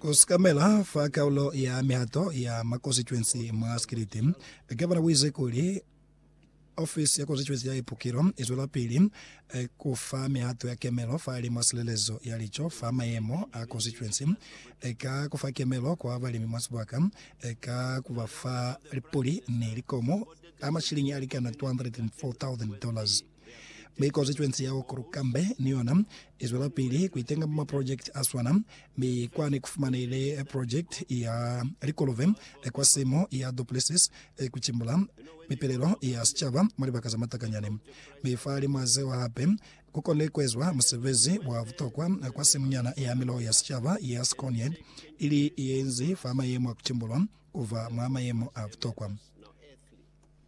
Ku sikamela fa kaulo ya mihato ya mwa konsituensi mwa Sikiliti, Gavana u ize kuli, Ofisi ya Konsituensi ya Ipukilo i zwelapili ku fa mihato ya kemelo fahalimw'a silelezo ya lico fa mayemo a konsituensi ka ku fa kemelo kwa balimi mwa sibaka ka ku ba fa lipuli ni likomo a mashiliñi a likana 204,000 dollars. Mi Constituency ya Okrukambe ni yona i zwelapili ku itenga mwa maprojekiti a swana, mi kwani ku fumanehile projekiti ya likolobe kwa simo ya Duplessis ku cimbula mipelelo ya sicaba mwa libaka za matakanyani. Mi fahalimw'a zeo hape, ku konile ku ezwa musebezi wa butokwa kwa simunyana ya miloho ya sicaba ya Skånejord, ili ye inzi fa mayemo a ku cimbulwa ku ba mwa mayemo a butokwa.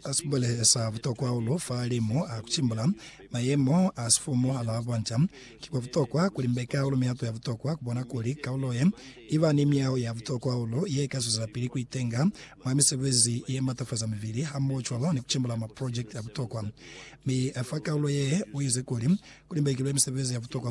Ka sibulelezo sa butokwa hahulu fa limu a ku cimbula, mayemo a sifumu ha l'a bonca. Ki kwa butokwa ku limbeka hahulu mihato ya butokwa ku bona kuli kaulo ye i ba ni miyaho ya butokwa hahulu ye ka zwezapili ku itenga mwa misebezi ye matafaza mibili hamohocwalo ni ku cimbula maprojekiti a butokwa. Mi fa kaulo ye u ize kuli, Ku limbekilwe misebezi ya butokwa fa